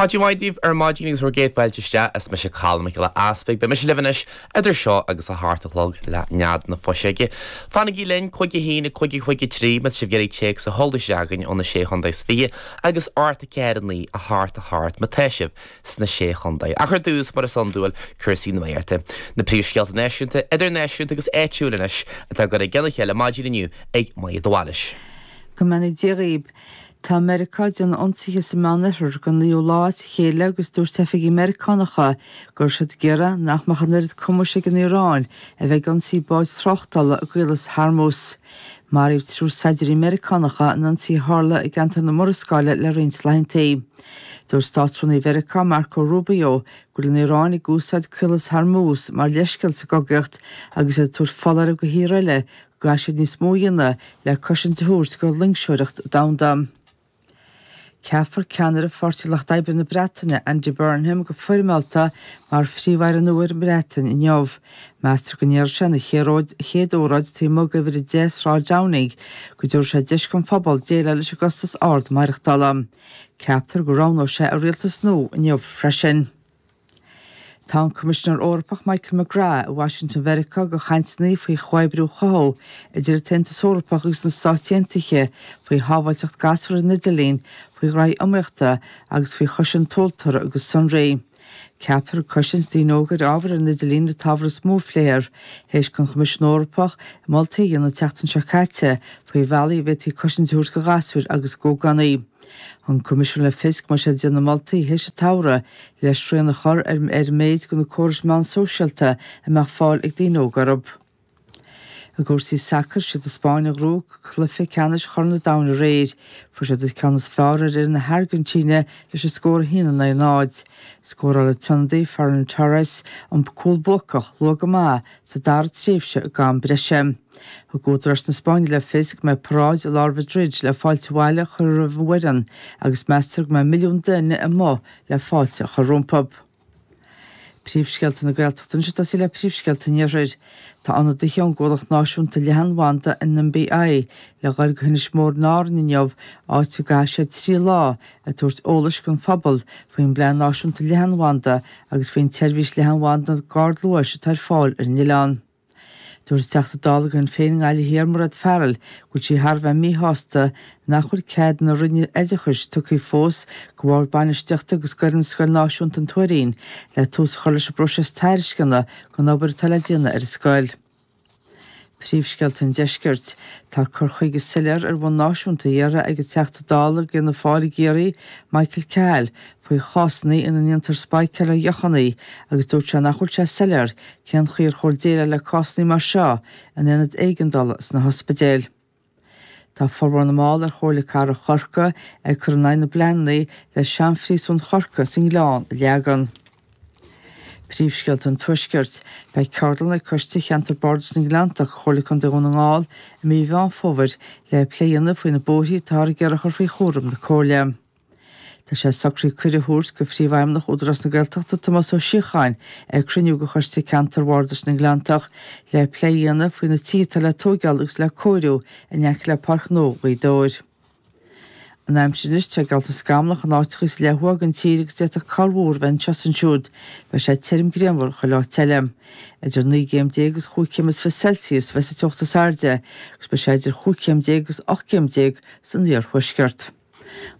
Maidin mhaith daoibh ar maidin agus bhur gcéad fáilte isteach. Is mise Colm Mac Giolla Easpaig. Beidh mise libh anois idir seo agus a hocht a chlog le Nead na Fuiseoige. Fanaigí linn, Cúig a haon, a cúig a cúig a trí, má tá sibh ag iarraidh téacs a chur isteach chugainn ó na Sé Chontae is Fiche agus ocht a ceathair a naoi a hocht a hocht má tá sibh sna Sé Chontae. Ach ar dtús, mar is iondúil, cúrsaí nuachta. Na príomhscéalta náisiúnta, idirnáisiúnta agus áitiúil anois atá á gcur i gcionn a chéile maidin inniu ag Máire de Bhailís. Go mbeannaí Dia dhaoib. Tá Meiriceá ag déanamh ionsaithe sa Meán Oirthear don naoú lá as a chéile agus dúirt oifigigh Mheiriceánacha go raibh siad ag iarraidh nach mbeadh an oiread cumais ag an Iaráin a bheith ag ionsaí báid tráchtála i gCaolas Hormuz. Maraíodh triúr saighdiúirí Meiriceánacha in ionsaí a tharla i gceantar na Murascaille le roinnt laethanta. Dúirt Státrúnaí Mheiriceá Marco Rubio go bhfuil an Iaráin ag úsáid Caolas Hormuz mar leithscéal sa gcogaíocht agus iad ag tabhairt foláireamh do thíortha eile go gcaithfidh siad níos mó a dhéanamh le cosaint a thabhairt do loingseoireacht domhanda. Ceapfar ceannaire Pháirtí Lucht Oibre na Breataine, Andy Burnham, go foirmeálta mar Phríomh-Aire nua ar an mBreatain inniu. Meastar go ndéarfaidh sé ina chéad óráid taobh amuigh d'Uimhir 10 Sráid Downing go dtabharfaidh sé deis don phobal déileáil leis an gcostas ard maireachtála. Ceaptar go roghnóidh sé a rialtas nua inniu freisin. Tá an Coimisinéir Eorpach Michael McGrath i Washington Mheiriceá do chainteanna faoi chomhoibriú a chothú idir an tAontas Eorpach agus na Stáit Aontaithe faoi shábháilteacht gasúr ar an idirlíon, faoi ghraithí iomaíochta agus faoi chosaint tomhaltóra agus sonraí. Ceaptar cosaint daoine óga ar ábhar ar an idirlíon an t-ábhar is mó a phléifear, th'éis don Choimisiún Eorpach moltaí a dhéanamh an tseachtain seo caite faoi bhealaí a bhféadfaí cosaint a thabhairt do ghasúir agus d'ógánaigh. Thug an Coimisiún le fios go mbeidh sé ag déanamh moltaí théis an tsamhraidh le srian a chur ar an méid de na córais meán sóisialta a mbeadh fáil ag daoine óga orthu. I gcúrsaí sacair, is iad an Spáinn a ghnóthaigh cluiche ceannais Chorn an Domhain aréir. Fuair siad an ceann is fearr ar fhir na hAirgintíne leis an scór 1 in aghaidh 0. Scóráil an t-ionadaí Ferran Torres an cúl buacach luath go maith sa dara tréimhse den am breise. Thug údaráis na Spáinne le fios go mbeidh paráid i lár Mhaidrid le fáilte abhaile a chur roimh an bhfoireann agus meastar go mbeidh milliún duine amuigh le fáilte a chur rompu. Príomhscéalta na Gaeltachta anois ag tosaí le príomhscéalta an iarthair. Tá ionadaithe ón gcomhlacht náisiúnta leathanbhanda NBI le ghoil go hInis Mór in Árainn inniu, áit a gcaithfidh siad trí lá ag tabhairt eolais don phobal faoin bPlean Náisiúnta Leathanbhanda agus faoin tseirbhís leathanbhanda ardluais atá ar fáil ar an oileán. Dúirt an Teachta Dála do Shinn Féin i nGaillimh Thiar Mairéad Farrell go bhfuil sí thar a bheith míshásta nach bhfuil cead na Roinne Oideachais tugtha fós do bhord bainistíochta agus d'fhoireann Scoil Náisiúnta an Tuairín le tús a chur leis an bpróiseas tairisceana don obair atá le déanamh ar an scoil. Príomhscéalta an Deiscirt, Tá cur chuige soiléir ar bhonn náisiúnta á iarraidh ag an Teachta Dála ag Fianna Fáil i gCiarraí, Michael Cahill, faoi chásanna ina ndéantar spáicéail ar dheochanna agus dúirt sé nach bhfuil sé soiléir cén chaoi ar chóir déileáil le cásanna mar seo in aonaid éigeandála sna hospidéil. Tá formhór na mball ar Chomhairle Cathrach Chorcaí ag cur in aghaidh na bpleananna le seanphríosún Chorcaí sa nGleann a leagan. Príomhscéalta an Tuaiscirt. Beidh ceardlann ag Coiste Cheantar Bardais na nGleanntach, Comhairle Contae Dhún na nGall, i mí Mheán Fómhair le plé a dhéanamh faoi na bóithre atáthar ag iarraidh a chur faoi chúram na Comhairle. Tá sé socraithe cuireadh a thabhairt go Príomhfheidhmeannach Údarás na Gaeltachta Tomás Ó Síocháin chuig cruinniú de Choiste Ceantair Bhardais na nGleanntach le plé a dhéanamh faoi na tithe atá le tóigeáil agus le cóiriú in aice le Páirc Ghnó Ghaoth Dobhair. An aimsir anois, tá sé geallta scamallach in áiteacha sa leath ó thuaidh den tír agus d'fhéadfadh corrmhúr a bheith anseo is ansiúd. Beidh sé tirim grianmhar chuile áit eile. Idir naoi gcéim déag agus chúig chéim is fiche Celsius a bheidh sa teocht is airde agus beidh sé idir chúig chéim déag agus ocht gcéim déag san iarthuaisceart.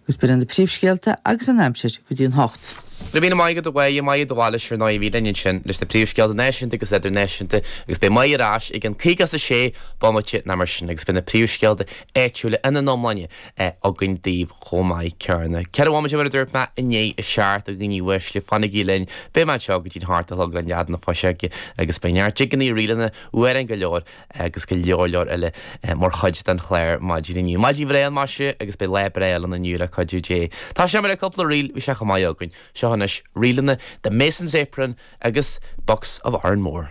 Agus b'in iad na príomhscéalta agus an aimsir go dtí an hocht. Bhí Maidhc, Maidhc de Bhailís ar ndóigh linn ansin leis na príomhscéalta náisiúnta agus idirnáisiúnta agus beidh Maidhc ar ais ag an caoga is a sé bomaite ná mar sin agus beidh na príomhscéalta áitiúla ina n-iomláine againn daoibh chomh maith céanna. Ceithre bhomaite mar a dúirt mé i ndiaidh a seacht a dhaoine uaisle fanaigí linn beidh mé anseo go dtí an hocht ach an tiúin Nead na fuiseoige agus beidh neart jigeannaí ríleanna amhráin go leor agus go leor leor eile mar chuid den chlár maidin inniu. Maidin bhreá ann maise agus beidh lá breá ann inniu le cuidiú Dé. Tosóidh muid le cúpla ríl, bhí sé chomh maith againn. Seo anois ríleanna The Mason's Apron agus Bucks of Oranmore.